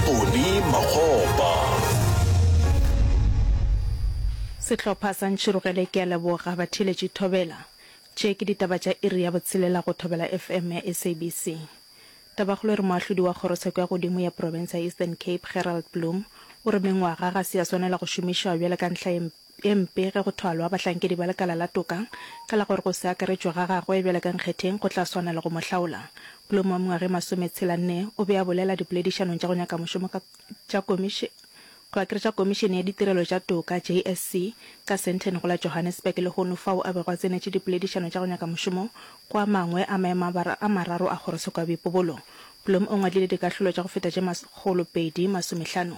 Tony Makgopa. Sehlopha sa Ntšhirogele ke a leboga batheeletši Thobela. Tše ke ditaba tša iri ya botshelela go Thobela FM ya SABC. Tabakgolo e re moahlodi wa kgorotsheko ya godimo ya profense ya Eastern Cape Gerald Bloom o re mengwaga ga se ya swanela go šomišwa bjale ka ntlha ye e mpe ge go thwalwa bahlankedi ba lekala la toka ka la gore go se akaretšwe ga gagwe bjalo ka nkgetheng go tla swana le go mo hlaola. Bloom wa mengwaga e masometshela-nne o be a bolela dipoledišanong tša go nyaka mošomo ka tša komiši, go akaretša Komišene ya Ditirelo tša Toka, JSC, ka Sandton go la Johannesburg lehono fao a bego a tsenetše dipoledišano tša go nyaka mošomo go a mangwe a maemo a mararo a kgorotsheko ya boipobolo. Bloom o ngwadile dikahlolo tša go feta tše makgolo pedi masomehlano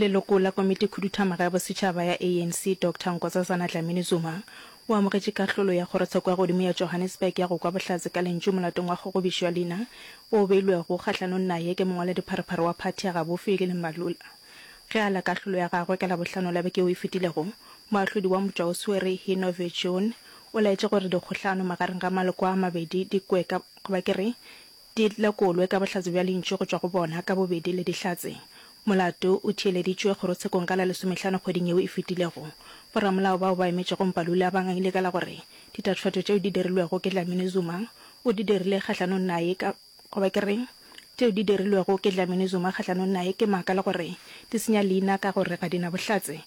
Leloko la Komitikhuduthamaga ya Bosetšhaba ya ANC, Doctor Nkosazana Dlamini-Zuma, o amogetše kahlolo ya Kgorotsheko ya Godimo ya Johannesburg ya go kwa bohlatse ka lentšu molatong wa kgogobišo ya leina o beilwego kgahlanong naye ke mongwaladipharephare wa phathi ya gabofi Lili Mbalula. Ge a la kahlolo ya gagwe ka Labohlano la beke o e fetilego, moahlodi wa mpša o swere Hino Viljoen o laetše gore dikgohlano magareng ga maloko a mabedi di kwe ka, goba ke re, Di lekolwe ka bohlatse bja lentšu go tšwa go bona ka bobedi le Dihlatse. Molato o theeleditšwe kgorotshekong ka la lesomehlano kgweding yeo e fetilego. Boramolao bao ba emetšego Mpalula ba ngangile ka la gore ditatofatšo tšeo di dirilwego ke Dlamini Zuma o di dirile kgahlanong naye ka goba ke re tšeo di dirilwego ke Dlamini Zuma kgahlanong naye ke maaka le gore di senya leina ka gore ga di na bohlatse.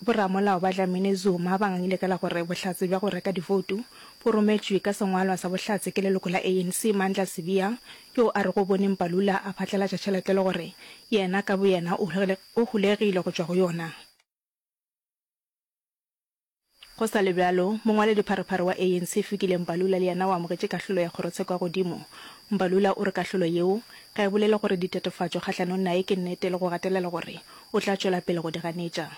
Boramolao ba Dlamini-Zuma ba ngangile ka la gore bohlatse bja go reka divoutu bo rometšwe ka sengwalwa sa bohlatse ke leloko la ANC Mandla Sibiya yoo a rego o bone Mbalula a phatlalatša tšhelete le gore yena ka boyena o hulegile go tšwa go yona. Go sa le bjalo, mongwaledipharephare wa ANC Fikile Mbalula le yena o amogetše kahlolo ya kgorotsheko ya godimo. Mbalula o re kahlolo yeo ga e bolele gore ditatofatšo kgahlanong naye ke nnete le go gatelela gore o tla tšwela pele go di ganetša.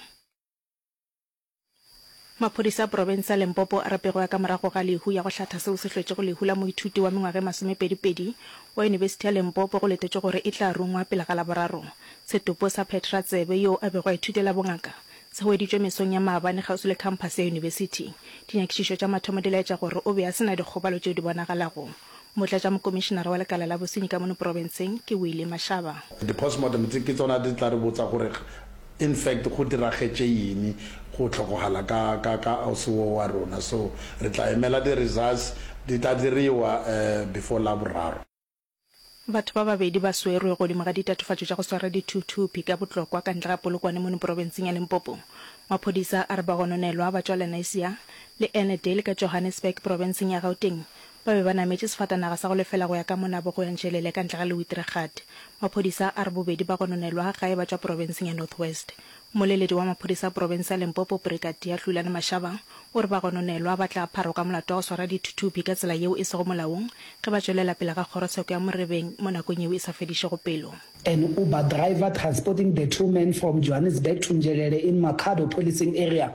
Maphodisa a profense ya Limpopo a re pego ya ka morago ga lehu ya go hlatha seo se hlwetšego lehu la moithuti wa mengwaga e masomepedipedi wa yunibesithi ya Limpopo go letetšwe gore e tla rungwa pele ga Laboraro. Setopo sa phetratsebe yoo a bego a ithutela bongaka Se hweditšwe mesong ya maabane kgauswi le khamphase ya yunibesithi. Dinyakišišo tša mathomo di laetša gore o be a se na dikgobalo tšeo di bonagalago. Motlatšamokomišenara wa lekala la bosenyi ka mono profenseng ke Willie Mashaba. Di-postmortem tse ke tsona di tla re botsa gore in fact go diragetše eng go hlokogala ka ka ka ausi wo wa rona. So re tla emela di-results di tla diriwa before Laboraro. Batho ba babedi ba swerwe godimo ga ditatofatšo tša go swara dithuthupi ka Botlokwa ka ntle ga Polokwane mono porobenseng ya Limpopo. Maphodisa a re ba gononelwa ba tšwa Lenasia le Annandale ka Johannesburg porobenseng ya Gauteng ba be ba nametše sefatanaga sa go lefela go ya ka monabo go ya Njelele ka ntle ga Lewitregat. Maphodisa a re bobedi ba gononelwa gae ba tšwa porobenseng ya North West. Moleledi wa maphodisa profense ya Limpopo Brigadier Hlulani Mashaba o re bagononelwa ba tla pharwa ka molato wa go swara dithuthupi ka tsela yeo e sego molaong ge ba tšwelela pele ga kgorotsheko ya Morebeng mo nakong yeo e sa fedišego pelo. An Uber driver transporting the two men from Johannesburg to Njelele in Makhado Policing Area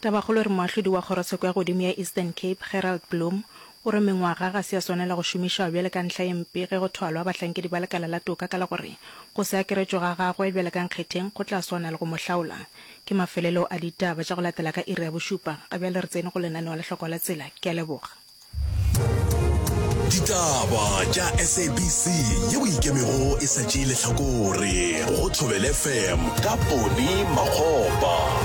Tabakgolo e re moahlodi wa kgorotsheko ya godimo ya Eastern Cape, Gerald Bloom, o re mengwaga ga se ya swanela go šomišwa bjale ka ntlha e mpe ge go thwalwa bahlankedi ba lekala la toka ka la gore go se akaretšwe ga gagwe bjale ka nkgetheng go tla swana le go mo hlaola ke mafelelo a ditaba tša go latela ka iri ya bošupa ga bjale re tsene go lenaneo la hloko la tsela ke a leboga. Ditaba tša SABC yeo e ikemego e sa tšee lehlakore go Thobela FM ka Ponny Makgopa.